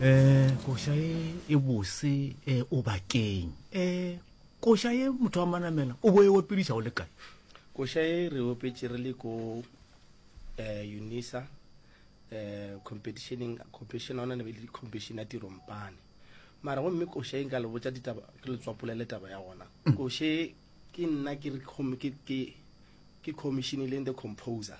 um koša e e bose um o bakeng um koša ye motho wa manamela o bo e opediša o le kae koša e re opetše re le ko um unisa um competitioneng competition ona ne be le competition ya tirompane mara gomme koša e nka le botsa ditaba ke le tswapolele taba ya gona mm. koše ke nna ke commissionileng the composer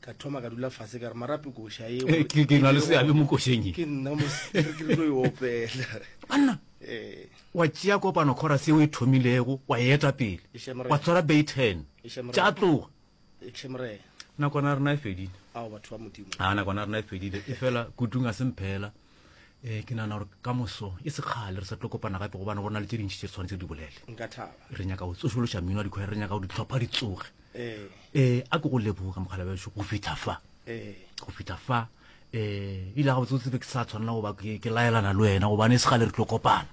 ka thoma ka dula fase ka re marape koša e eh, ke ke na le seabe mo košeng e. ke nna mo ke tlo e opela banna eh wa tšea kopano khora se o e thomilego wa e eta pele Eshe, mre. wa tshwara bay ten Eshe, mre. tša tloga ekše morena nakwana rena e fedile ao batho ba modimo a nakwana rena e fedile e fela kutung a semphela um ke nagana gore ka moso e se kgale re sa tlo kopana gape gobane go na le tse dintšhi tse re tshwanetse di bolele re nyaka go tsošološa mmino wa dikgwere re nyaka go ditlhopha di tsoge um a ke go lebogo ka mokgala bešo go fitlha fa go fitlha fa um ile ga botsotse be ke sa tshwanela goba ke laelana le wena gobane e se gale re tlo kopana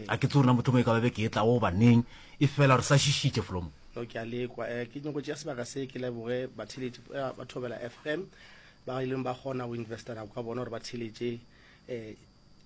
a ke tse rena motho mo e ka babe ke e tla go baneng e fela re sa šišitše folomo ke a lekwa ke nyoko tšea sebaka se ke leboge batheledi ba thobela fm ba ileng ba kgona go investela go ka bona gore ba theletše um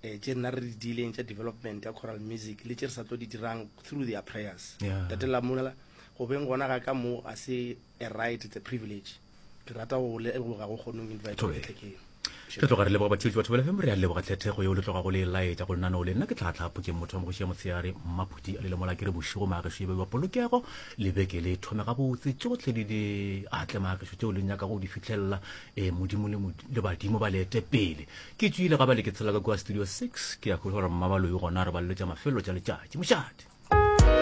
tše nna re di dileng tša development ya coral music le tše re sa tlo di dirang through their prayers tate lamula go beng gona ga ka moo a se a right it's a privilege ke rata go leboga go kgonong invitetlekeng ke tloga re leboga batheletši batho bela femo re a leboga tlhethego yeo le tloga go le laetša go nnano le nna ke tlhatlha phokeng motho wa mogoši ya motshegare mmaphuti a lelemola ke re bošego maagešo e be ba polokego le beke le thome gabotse tšohle le di atle maagišo tšeo le nyaka go di fitlhelela um modimo le badimo ba leete pele ke tswile ga ba le ke tshela ka kua studio 6 ke ya go gore mmabaloi gona re ba leletša mafelo tša letšatši mošate